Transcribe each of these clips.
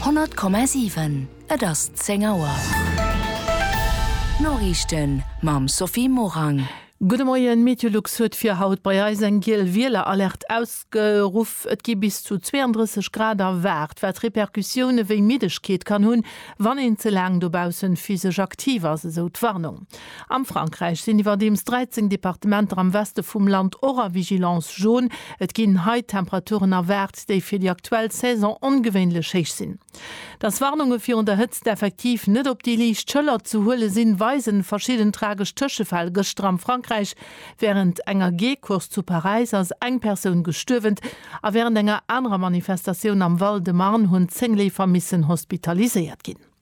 100,7 Et ass 10 Auer. D'Noriichten mam Sophie Morang. Gudde Moien, Meteolux huet fir haut bei eis eng giel Wieleralerte ausgeruff. Et gi bis zu 32 Grad erwaart, wat Repercussioune wéi Middegkeet kann hunn, wann een ze laang dobaussen physesch aktiv ass, esou d'Warnung. Am Frankräich sinn iwwerdeems 13 Departementer am Weste vum Land och a Vigilance jaune. Et ginn hei Temperaturen erwaart, déi fir déi aktuell Saison ongewéinlech héich sinn. Dass Warnunge virun der Hëtzt effektiv net op déi liicht Schëller ze huele sinn, weisen verschidden tragesch Tëschefäll gëschter am Frankräich. Wärend enger Geecourse zu Paräis ass eng Persoun gestuerwent a wärend enger anerer Manifestatioun am Val-de-Marne hunn 10 Leefer missen hospitaliséiert ginn.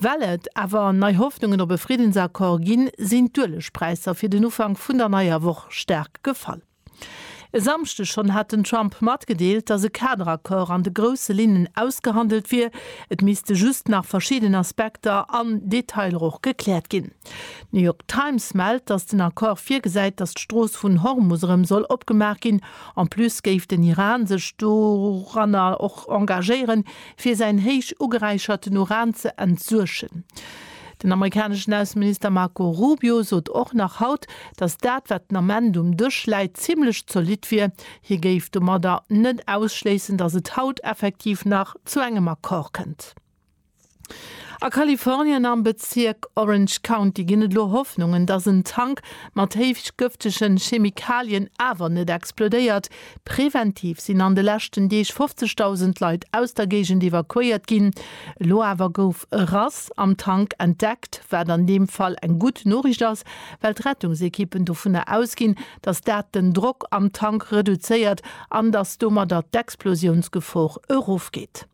Well et awer nei Hoffnungen op e Friddensaccord ginn, sinn d'Uelegpräisser fir den Ufank vun der neier Woch staark gefall. E Samschdeg schonn hat den Trump matgedeelt, datt e Kaderaccord an de grousse Linnen ausgehandelt wier, et misste just nach verschidden Aspekter an Detailer och gekläert ginn. D'New York Times mellt, datt den Accord virgesäit, datt d'Strooss vun Hormus erëm soll opgemaach ginn. En plus géif den Iran sech doranner och engagéieren, fir säin héich ugeräicherten Uran ze entsuergen. Den amerikaneschen Ausseminister Marco Rubio sot och nach haut, datt dat, wat den Ament um Dësch läit, zimmlech zolidd wier. Hie géif domadder net ausschléissen, datt et haut effektiv nach zu engem Accord kënnt. A Kalifornien am Bezierk Orange County ginn et elo Hoffnungen, datt en Tank mat héich gëftegen Chemikalien awer net explodéiert. Preventiv sinn an de leschten Deeg 50.000 Leit aus der Géigend evakuéiert ginn. Elo awer gouf e Rass am Tank entdeckt, wat an deem Fall eng gutt Noriicht ass, well d'Rettungsekippen dovunner ausginn, datt dat den Drock am Tank reduzéiert an datt domadder d'Explosiounsgefor erofgeet.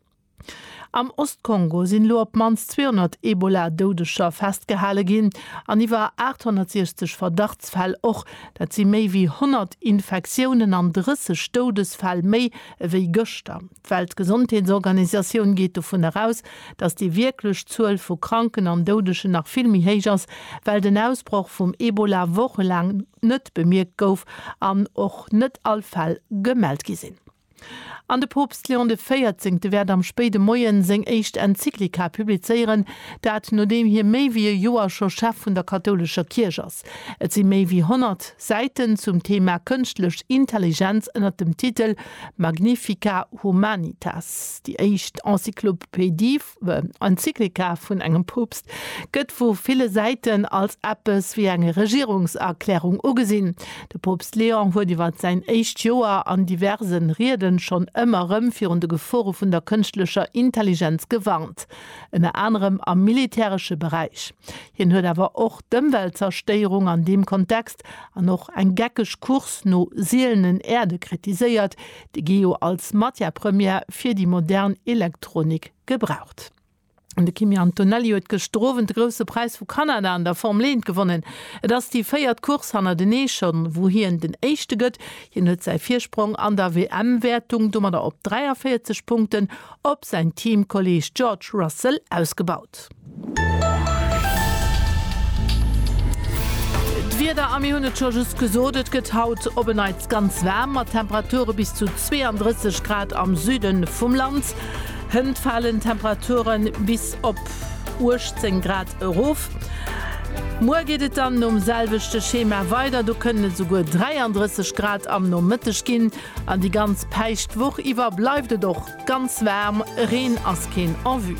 Am Ost-Kongo sinn elo op d'mannst 200 Ebola-Doudeger festgehale ginn an iwwer 860 Verdachtsfäll och. Dat si méi wéi 100 Infektiounen an 30 Doudesfäll méi ewéi gëschter. D'Weltgesondheetsorganisatioun geet dovun eraus, datt déi wierklech Zuel vu Kranken an Doudegen nach vill méi héich ass, well den Ausbroch vum Ebola wochelaang net bemierkt gouf an och net all Fäll gemellt gi sinn. An de Poopst Léon de Véierzéngte wäert am spéide Moie seng éischt Enzyklika publizéieren, dat nodeem hie méi wéi e Joer scho Chef vun der kathoulescher Kierch ass. Et si méi wéi 100 Säiten zum Theema kënschtlech Intelligenz ënner dem Titel Magnifica Humanitas, déi éischt Enzyklopedie Enzyklika vun engem Poopst gëtt vu ville Säiten als eppes wéi eng Regierungserklärung ugesinn. De Poopst Leon huet iwwer säin éischt Joer an diverse Rieden schonn ëmmer erëm virun de Gefore vun der kënschtlecher Intelligenz gewarnt, ënner anerem am militäresche Beräich. Hien huet awer och d'Ëmweltzerstéierung an deem Kontext an och eng geckeg Course no sielenen Äerde kritiséiert, de Geo als Matière première fir déi modern Elektronik gebraucht. An de Kimi Antonelli huet gëschter Owend de Grousse Präis vu Kanada an der Formel 1 gewonnen. Et ass déi véiert Course hannertenee schonn, wou hien den Éischte gëtt. Hien huet säi Virsprong an der WM-Wäertung domadder op 43 Punkten op säin Teamkolleeg George Russell ausgebaut. D'Wieder, a mir hunn et scho just gesot, et gëtt haut op en Neits ganz waarm, mat Temperature bis zu 32 Grad am Süde vum Land. Hënt falen d'Temperature bis op 18 Grad erof. Muer geet et dann nom selwechte Schema weider, do kënnen et esouguer 33 Grad am Nomëtteg ginn. An déi ganz päischt Woch iwwer bleift et och Ganz waarm, Reen ass keen en vue.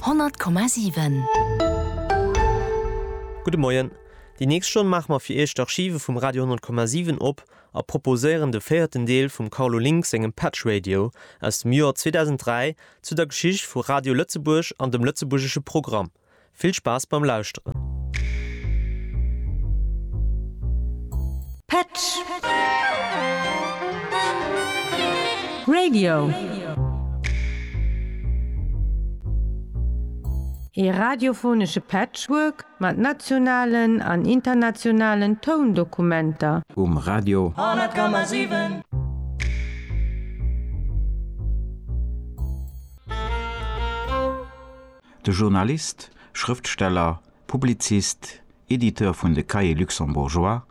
100,7. Gudde Moien. Déi nächst Stonn maache mer fir Iech d'Archive vum Radio 100,7 op a proposéieren de véierten Deel vum Carlo Link sengem Patch Radio aus dem Joer 2003 zu der Geschicht vu Radio Lëtzebuerg an dem lëtzebuergesche Programm. Vill Spaass beim Lauschteren! Petsch! Radio! Ee radiophonesche Patchwork mat nationalen an internationalen Toundokumenter. Um Radio! 100,7. De Journalist, Schrëftsteller, Publizist, Editeur vun de Cahiers luxembourgeois,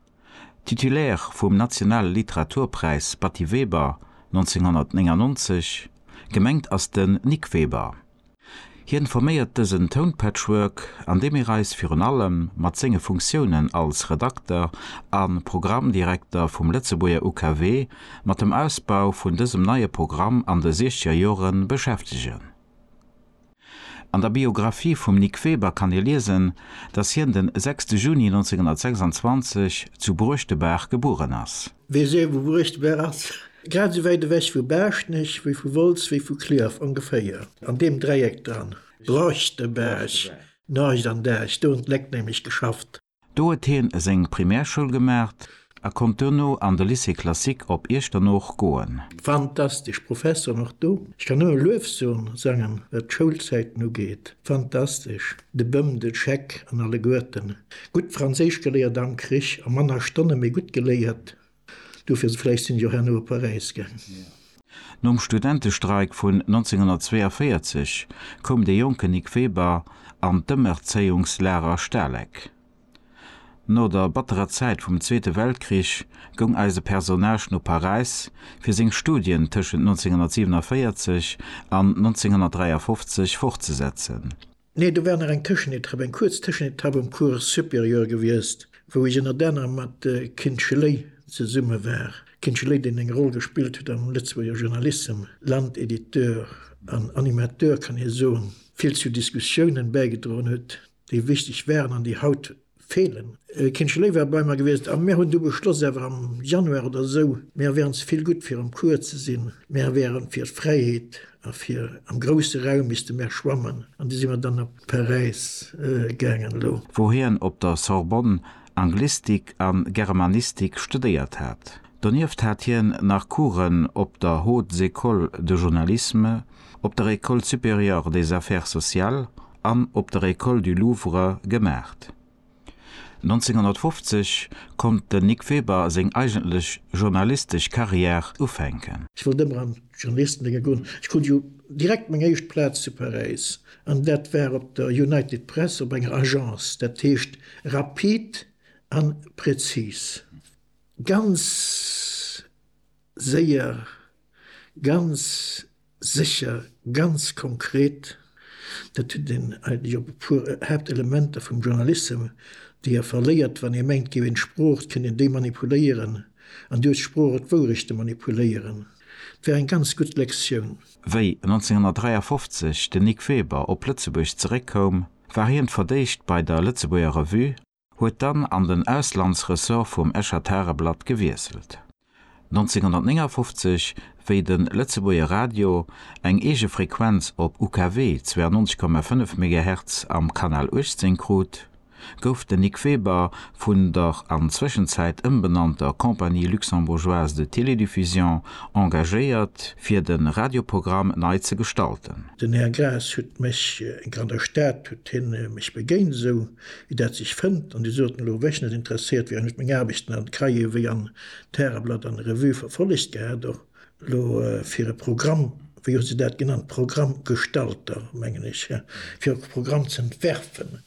Titulaire vum Nationale Literaturpräis Batty Weber 1999, gemengt ass den Nic Weber. Hien forméiert dësen Tounpatchwork, an deem mir eis virun allem mat senge Funktiounen als Redakter a Programmdirekter vum Lëtzebuerger UKW mat dem Ausbau vun dësem neie Programm an de Siechzegerjore beschäftegen. An der Biographie vum Nic Weber kann ee liesen, datt hien den 6 Juni 1926 zu Bruechtebaach gebueren ass. Weess ee wou Bruechtebaach ass? Grad esou wäit ewech vu Baaschtnech wéi vu Wolz wéi vu Clierf ongeféier, an deem Dräieck dran. Bruechtebaach, Norgescht an Däerch, do hunn d'Léck nämlech geschafft. Do huet hien seng Primärschoul gemaacht a konnt duerno an de Lycée Classique op Iechternooch goen. Fantastesch Professoren och do. Ech kann nëmme Luefsoen sangen wat d'Schoulzäiten ugeet. Fantastesch, de Bëm, den Scheck an alleguerten. Gutt Franséisch geléiert am Krich a manner Stonne mee gutt geléiert. Dofir vläicht sinn jo herno op Paräis gaang. Nom Studentestreik vun 1942 koum de jonken Nic Weber an d'Ëmerzéiungslager Stalek. No der batterer Zäit vum Zweete Weltkrich goung eise Personnage no Paräis fir seng Studien tëschent 1947 an 1953 fortzesetzen. Nee, do war nach eng Tëschenetapp, eng kuerz Tëschenetapp um Cours supérieur gewiescht, wou ech ënnert anerem mat Kin Schley zesumme war. Kin Schley, deen eng Roll gespillt huet am Lëtzebuerger Journalissem, Landediteur an Animateur kann ee soen, vill zu Diskussiounen bäigedroen huet, déi wichteg waren an déi haut, Feelen. Kindche Léiw war bei mer gewiesst a mir hunn du beschloss awer am Januar oder esou, mir wären ze vill gutt fir am Cours ze sinn, mir wären fir d'Fräiheet a fir am grousse Raum misste mer schwammen an du si mer dann op Paräis gaangen. Elo. Wou hien op der Sorbonne Anglistik a Germanistik studéiert hat. Donieft hat hien nach Coursen op der Haute Ecole de Journalisme, op der École supérieure des Affaires sociales an op der École du Louvre gemaacht. 1950 konnt den Nic Weber seng eigentlech journalistesch Carrière ufänken. Ech wollt ëmmer an d'Journalistendénge goen. Ech krut jo direkt meng éischt Plaz zu Paräis, an dat war op der United Press op enger Agence, dat heescht rapid a präzis, ganz séier Ganz sécher, ganz konkret, dat hutt een hei jo op e puer Haaptelementer vum Journalissem, déi e verléiert, wann ee mengt, géif een d'Sprooch kënnen demanipuléieren, an duerch d'Sprooch och d'Wourechte manipuléieren. Et war eng ganz gutt Lektioun. Wéi 1953 den Nic Weber op Lëtzebuerg zeréckkoum, war hien fir d'éischt bei der Lëtzebuerger Revue, huet dann an den Auslandsressort vum Escher Tageblatt gewiesselt. 1959, wéi de Lëtzebuerger Radio eng eege Frequenz op UKW 92,5 Megahertz am Kanal 18 krut, gouf den Nic Weber vun der an Zwëschenzäit ëmbenannter Compagnie luxembourgeoise de télédiffusion engagéiert, fir de Radioprogramm nei ze gestalten. Den Här Graas huet mech, eng Kannerstad huet hien mech begéint, esou Wéi dat sech fënnt, an déi soten elo, wéch net interesséiert, wärend ech meng Aarbechten an d'Cahiers wéi an d'Tageblatt an d'Revue verfollegt gehat, och elo fir e Programm, wéi hu se dat genannt, Programmgestalter, mengen ech, fir och e Programm ze entwerfen.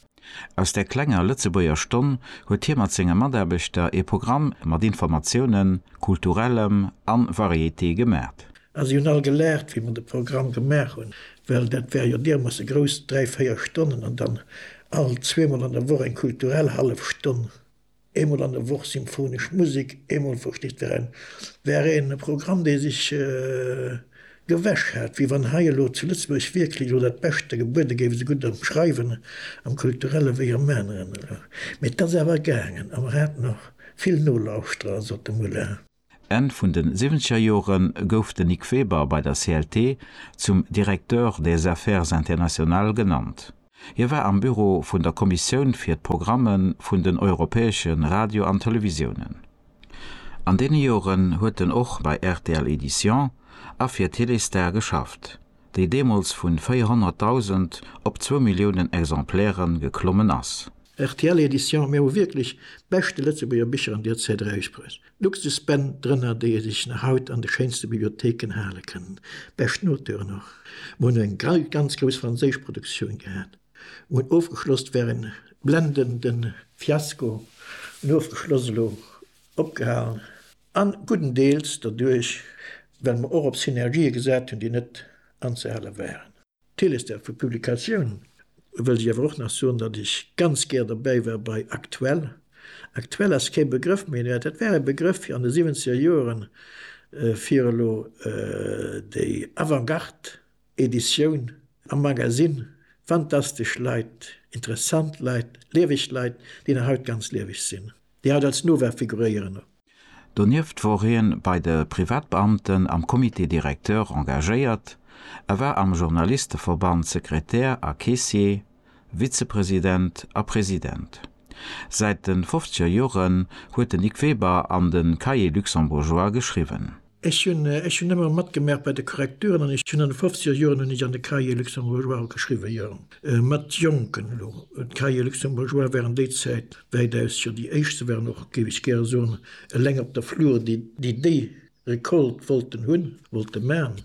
Aus där klenger Lëtzebuerger Stonn huet hie mat senge Mataarbechter ee Programm mat Informatiounen, Kulturellem a Variété gemaat. A si hunn all gelaacht, wéi mer de Programm gemaach hunn, well dat war jo diermoosse grouss, dräi, véier Stonnen an dann all zweemol an der Woch eng kulturell hallef Stonn, eemol an der Woch symphonesch Musek, eemol, versteet der, en war e Programm, dee sech gewäsch hat, wéi wann hei elo zu Lëtzebuerg wierklech elo dat Beschte gebuede géif, esou gutt am Schreiwen, am Kulturelle wéi am aneren elo. Mee et ass awer gaangen a mer haten och vill Nolauschterer, sot de Muller. Enn vun de siwwenzeger Jore gouf de Nic Weber bei der CLT zum Directeur des Affaires internationales genannt. Hie war am Büro vun der Kommissioun fir d'Programme vun den europäesche Radio an Televisiounen. An deene Joren huet en och bei rtl Éditions a fir Téléstar geschafft, déi deemools vu 400.000 op zwou Milliounen Exemplaire geklommen ass. Rtl Éditions, Mir hu wierklech beschte Lëtzebuerger Bicher an Dir zitt Räich Press. Luxusbänn drënner, déi ee sech nach haut an de schéinste Bibliotheken hale kann. Bescht Noteuren och. Mer hunn eng ganz grouss franséisch Produktioun gehat. Mer hunn ofgeschloss, war en blendende Fiasko, hunn ofgeschloss, elo opgehalen, a gudden Deels derduerch, well mer och op Synergië gesat hunn, déi net anzehale waren. D'Theles der vu Publikatioun wëllt ech awer och nach soen, datt ech ganz gär dobäi war bei Aktuell. Aktuell ass kee Begrëff méi, mä dat war e Begrëff fir an de siwwenzeger Joeren, fir elo déi Avantgarde-Editioun am Magasinn, fantastesch Leit, interessant Leit, lieweg Leit, déi nach haut ganz lieweg sinn, déi haut als Nova figuréieren. Donieft wor hien bei de Privatbeamten am Comité directeur engagéiert, a war am Journalisteverband Sekretär a Caissier, Vizepresident a President. Säit den fofzeger Joren huet den Nic Weber an den Cahiers luxembourgeois geschriwwen. Ech hunn ech hunn ëmmer matgemerkt bei de Korrekturen an ech hunn an de fofziger Joren hunn ech an de Cahiers luxembourgeois och geschriwwen, jo, mat Jonken elo. D'Cahiers luxembourgeois waren déi Zäit wäitaus jo déi éischt. Se waren och, géif ech gäre soen, eleng op der Flur, déi déi Récolte wollten hunn, wollte man.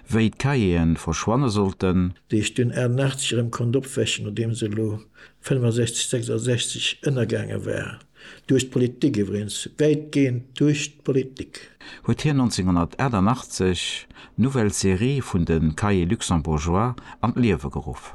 Wéi d'Cahieren verschwanne sollten. Déi ech dunn 88 erëm konnt opwächen, nodeem se elo 65, 66 ënnergaange war, duerch d'Politik iwwregens, wäitgehend duerch d'Politik. Huet hien 1988 d'Nouvelle Série vun de Cahiers luxembourgeois an d'Liewe geruff.